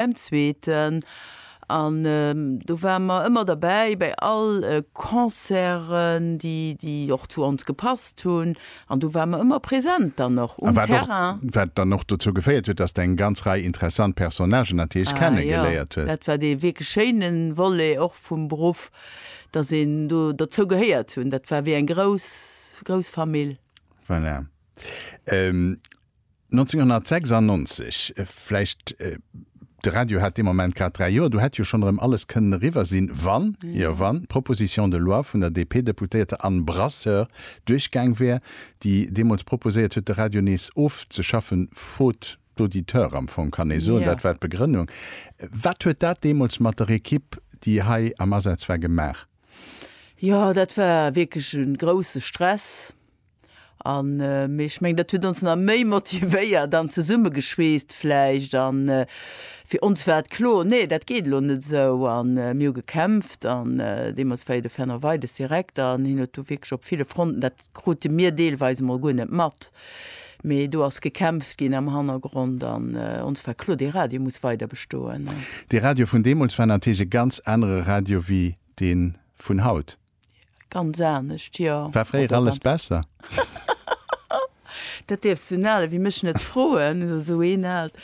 Beim zweeten, an do ware mer ëmmer derbäi, bäi all Concerten, déi och zu ons gepasst hunn, an do ware mer ëmmer präsent dann och um Terrain. A wat dann och dozou geféiert huet, dass de eng ganz Rei interessant Personnagen natierlech kennegeléiert hues. Ah jo, dat war dee wierklech schéine Volet och vum Beruff, dass een do derzou gehéiert hunn. Dat war wéi eng grouss, grouss Famill. Voilà. 1996, vläicht, de Radio hat dee Moment grad dräi Joer, do hätt jo schonn erëm alles kënnen eriwwer sinn, wann, jo wann, d'Proposition de loi vun der DP-Deputéierter Anne Brasseur duerchgaang wär, déi deemools proposéiert huet, de Radio nees ofzeschaffen, faute d'auditeurs am Fong, kann ee soen. Dat war d'Begrënnung. Wat huet dat deemools mat der Ekipp, déi hei am Asaz war, gemaach? Jo, dat war wierklech e grousse Stress. An, mee ech mengen, dat huet ons nach méi motivéiert an zesummegeschweesst vläicht. An fir ons war et kloer, nee, dat geet elo net esou. An mir hu gekämpft. An deemools war jo de Fernand Weides Direkter an hien huet do wierklech op ville Fronten, dat krute mir deelweis emol guer net mat, mee do ass gekämpft ginn am Hannergrond. An ons war kloer, dee Radio muss weider bestoen. Dee Radio vun deemools war natierlech e ganz anere Radio wéi dee vun haut. Ganz anescht, jo. War fréier alles besser? Dat dierfs du en ale wéi mech net froen, also esou een aalt.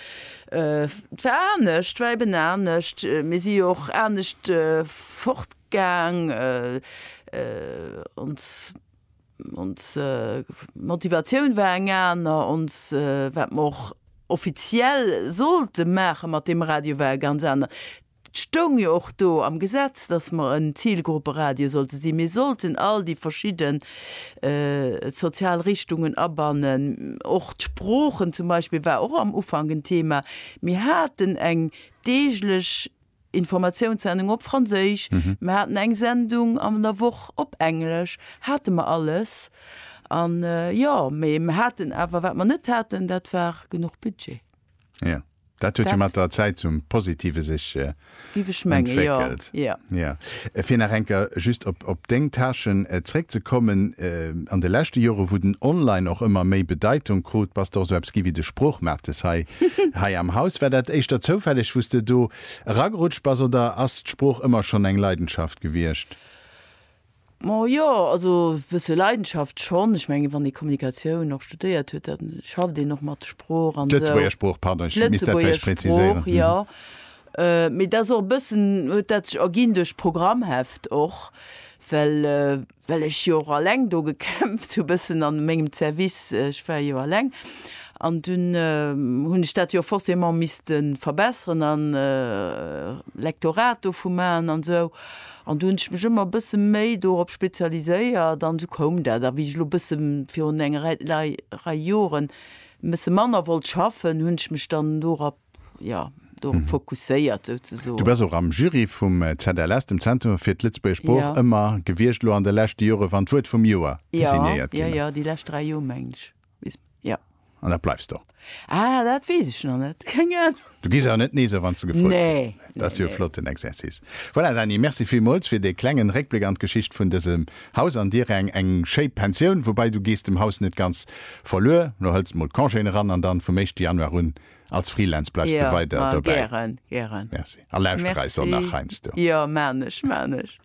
Et war anescht, war eben anescht. Mir si jo och anescht fortgaang. Ons, ons Motivatioun war eng aner, ons, wat mer och offiziell sollte maache mat deem Radio war e ganz anert. Et stoung jo och do am Gesetz, dass mer en Zilgrupperadio sollte sinn. Mir sollten all déi verschidde sozial Richtungen abannen. Och d'Sproochen zum Beispill war och am Ufank en Thema. Mir haten eng deeglech Informatiounssendung op Franséisch, mer haten eng Sendung an der Woch op Englesch, hate mer alles. An jo, mee mer haten awer, wat mer net haten, dat war genuch Budget. Ja. Dat huet jo mat der Zäit zum Positive sech entwéckelt. Fir nach eng Kéier just op deng Tâchen zréckzekommen, An de leschte Jore wou den Online och ëmmer méi Bedeitung krut, bass de och esou eppes gi wéi de Sproochmates hei am Haus. War dat éischter zoufälleg, wou s de do eragerutscht bass oder ass d'Sprooch ëmmer schonn eng Leidenschaft gewiescht? Ma jo, also bësse Leidenschaft schonn. Ech mengen, wann ee Kommunikatioun och studéiert huet, da schafft een och mat Sprooch an esou. D'Lëtzebuerger Sprooch, pardon, ech misst dat vläicht präziséieren. D'Lëtzebuerger Sprooch, jo. Mee dat ass och e bëssen, huet dat sech erginn duerch d'Programmheft och, well, well ech jo och alleng do gekämpft hu bëssen a mengem Service, ech war jo alleng, an dunn hunn ech dat jo forcément misste verbesseren a Lektorat dovu maachen an esou. An do hunn ech mech ëmmer e bësse méi dorop spezialiséiert an esou koum dat. A wéi ech elo e bësse virun enger Rei, Lei, Rei Joren e bësse manner wollt schaffen, hunn ech mech dann dorop, jo, dorop fokusséiert Du souzesoen. bass och am Jury vum ZLS, dem Zentrum fir d'Lëtzebuergesch Jo. Sprooch, ëmmer gewiescht. Elo an de leschte Jore wann d'Wuert vum Joer Jo, designéiert jo, ginn ass. jo, déi lescht dräi Joer, mengen ech. Jo. An dat bleifs do? Ah, dat weess ech nach net. Keng Ahnung. Du gees awer net Nee soen, wann s de gefrot gëtt? Nee. Dat ass jo e flotten Exercice. Voilà, Dany, merci villmools fir dee klengen Réckbléck an d'Geschicht vun dësem Haus an dir eng eng schéi Pensioun. Woubei, du gees dem Haus net ganz verluer. Lo hëls mol d'Congéen eran an dann vum éischte Januar un als Freelance bleifs de weider dobäi. Jo, ma gären, gären. Merci. A lauschter eis och nach heiansdo. Merci. Jo, maan ech, maan ech.